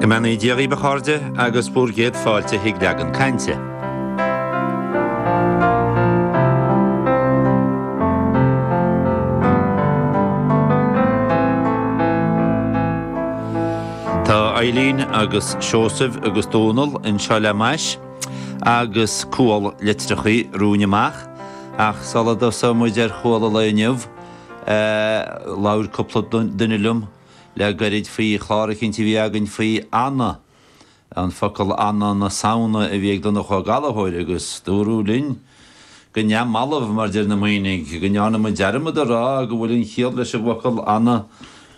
Go mbeannaí Dia dhíbh, a chairde, agus bhur gcéad fáilte chuig Leagan Cainte. Tá Eibhlín agus Seosamh agus Dónal anseo le m'ais agus cual litreachaí romhainn amach, ach sula dtosóidh muid ar chual an lae inniu, labhair cúpla duine liom. le gairid faoi chlár eicínt a bhí againn faoi ana, an focal ana na Samhna a bhí ag Donncha Ó Gallchóir agus dúradh linn, go neamhbhalbh, mar deir na Muimhnigh, go ndearna muid dearmad a rá go bhfuil an chiall leis an bhfocal ana,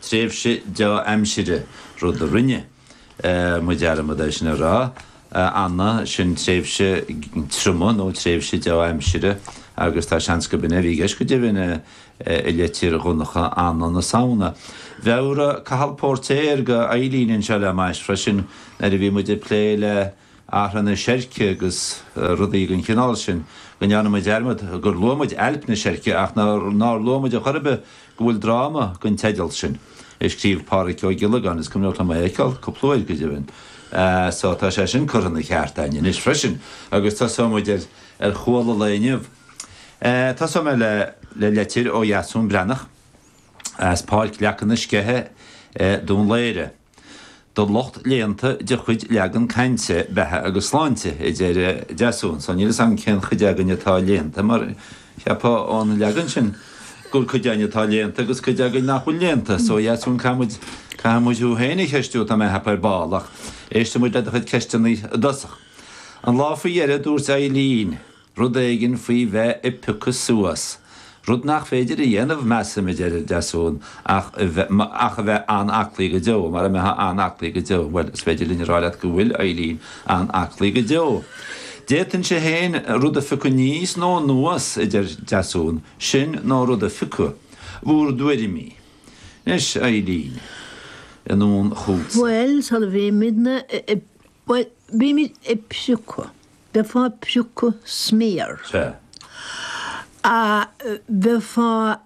tréimhse dea-aimsire, rud a rinne. muid dearmad é sin a rá, ana, sin tréimhse triomaigh nó tréimhse dea-aimsire agus tá seans gurb in é a bhí i gceist go deimhin i litir Dhonncha ana na Samhna. Mheabhraigh Cathal Póirtéir do Eibhlín anseo le m'ais freisin nuair a bhí muid ag plé le orthaí seirce agus rudaí den chineál sin, go ndearna muid dearmad gur luaigh muid ailp na seirce ach nár luaigh muid ar chor ar bith go bhfuil dráma den teideal sin, a scríobh Pádraig Ó Giollagáin, is cuimhneach liom é a fheiceáil cúpla uair, go deimhin, so tá sé sin curtha ina cheart againn anois freisin agus tosóidh muid ar chual an lae inniu. Tosóidh mé le litir ó Dheasún Breathnach as Páirc Leaca na Sceiche i nDún Laoghaire. Don lucht léannta de chuid Leagan Cainte Beatha agus Sláinte, a deir Deasún, so níl 'fhios agam cén chuid againn atá léannta, mar cheapfá ón leagan sin gur cuid againn atá léannta agus cuid againn nach bhfuil léannta. So a Dheasúin, caithfimid, caithfimid thú féin a cheistiú, tá mé ag ceapadh, ar ball, ach éistfimid le do chuid ceisteanna i dtosach. An lá faoi dheireadh, dúirt Eibhlín. Rud éigin faoi bheith ag piocadh suas, rud nach féidir a dhéanamh, measaim, a deir Deasún, ach a bheith, ach a bheith an-aclaí go deo, mara mbeithfeá an-aclaí go deo, bhuel, is féidir linn a rá leat go bhfuil Eibhlín an-aclaí go deo. D'fhéadfainnse féin rud a phiocadh aníos nó anuas, a deir Deasún, sin nó rud a phiocadh. Bhúr dtuairimí. Anois, a Eibhlín, anonn chugatsa. Bhuel, is amhlaidh a bhímidne ag, bhuel, bímid ag piocadh. bheifeá ag priocadh sméar. Sea. A, bheifeá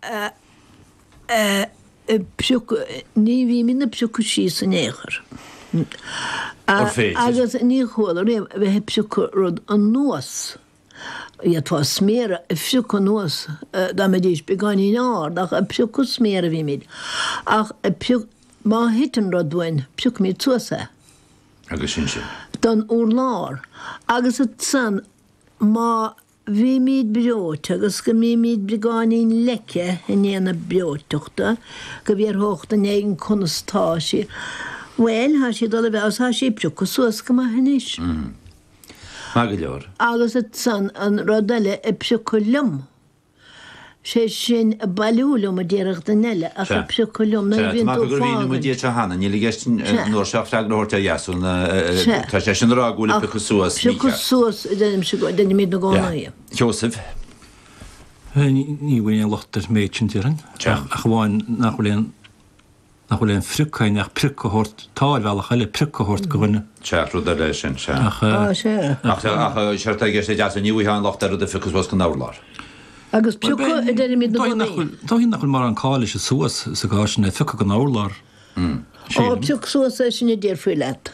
ag priocadh, ní bhímín ag priocadh síos in aon chor. A, An féidir? Agus ní chuala riamh a bheith ag priocadh rud anuas. D'fhéadfá sméar a phriocadh anuas dá mbeidís beagáinín ard ach ag priocadh sméar a bhímid. Ach ag priocadh, má thiteann rud uainn, priocfaimid suas é. agus ansin. don urlár, agus ansan, má bhímid breoite agus go mbímid beagáinín leice i ndiaidh na breoiteachta, go bhfiafródh duine éigin conas tá sí, bhuel, tá sí ag dul i bhfeabhas, tá sí ag priocadh suas go maith anois. Maith go leor. Agus ansan, an rud eile ag priocadh liom, sé sin, ag bailiú liom, a déarfadh duine eile, ach ag priocadh liom, nuair a bhíonn tú ag fágaint. Seosamh. Ní bhfaighinn aon locht ar an méid sin, déarfainn, ach amháin nach bhfuil aon. nach bhfuil aon phrioc ann ach prioc a thabhairt, tá, ar bhealach eile, prioc a thabhairt go dhuine. Ceart rud eile é sin, sea. Ach. Á, sea. Ach, ach, séard atá i gceist ag Deasún, ní bhfuightheá aon locht ar rud a phiocadh suas gon urlár. Agus piocadh a deirimid na gunnaí. Dóigh nach bhfuil mórán call le suas sa gcás sin le phiocadh gon urlár. Á, pioc suas é sin a déarfaí leat.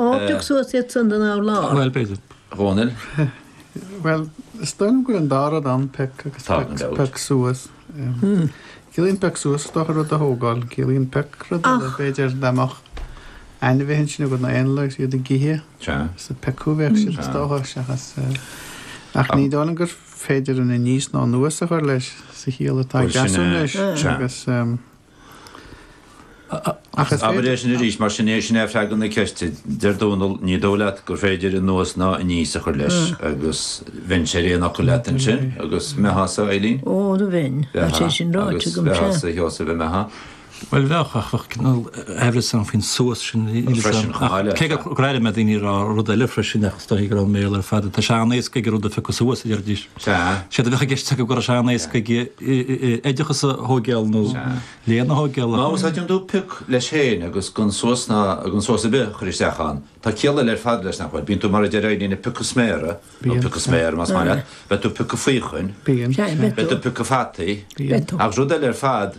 Ó pioc suas iad san den urlár. Bhuel, b'fhéidir. A Dhónaill. Bhuel, is dóigh liom go bhfuil an dá rud ann, pioc agus pioc suas. Ciallaíonn pioc suas, is dócha, rud a thógáil. Ciallaíonn pioc rud eile, b'fhéidir, dá mbeadh ainmhithe ansin agat nó éanlaith agus iad ag ithe, is ag piocadh a bheadh siad, is dócha, seachas. Ach ní dóigh liom gur féidir aníos ná anuas a chur leis sa chiall atá ag Deasún leis, agus. Abair é sin arís, mar sin, sin é freagra na ceiste. Deir Dónall, ní dóigh leat gur féidir anuas ná aníos a chur leis, agus bheinn ar aon fhocal leat ansin, agus an mbeifeása, Eileen? Ó, a bheinn, agus é sin ráite agam, sea. Agus mé tha, sa, Sheosaimh, a mé tha. Bhuel, bheadh, ach bheadh cineál amhras ann faoin suas sin, freisin, chomh maith, cé go gcuala mé ag daoine ag rá rud eile freisin, ach is dóigh gurb ón mBéarla ar fad é, tá sé an-éascaidh aige rud a phiocadh suas, a deirfidís. Sea. Séard a bheadh i gceist acu go raibh sé an-éasca aige oideachas a thógáil nó léann a thógáil. Má úsáideann tú pioc leis féin agus gan suas ná gan síos ar bith a chur isteach ann, tá ciall eile ar fad leis nach bhfuil? Bíonn tú, mar a deir Éinín, ag piocadh sméara, nó ag piocadh sméar más maith leat, beidh tú ag piocadh faochain, beidh tú ag piocadh fataí, agus rud eile ar fad.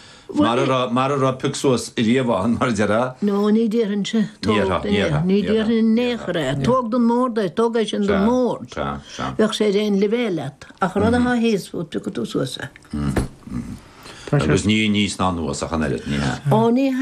Mara raibh pioc suas riamh ann, mar a déarfá. No, ní déarfainnse. Tóg den urlár é. Ní déarfainn in aon chor é. Tóg don mbord é. Tóg é sin don mbord. Bheadh sé ar aon leibhéal leat. Ach rud atá thíos fút, piocfaidh tú suas é. Agus ní aníos ná anuas ach an oiread, ní hea? Ó, ní hea.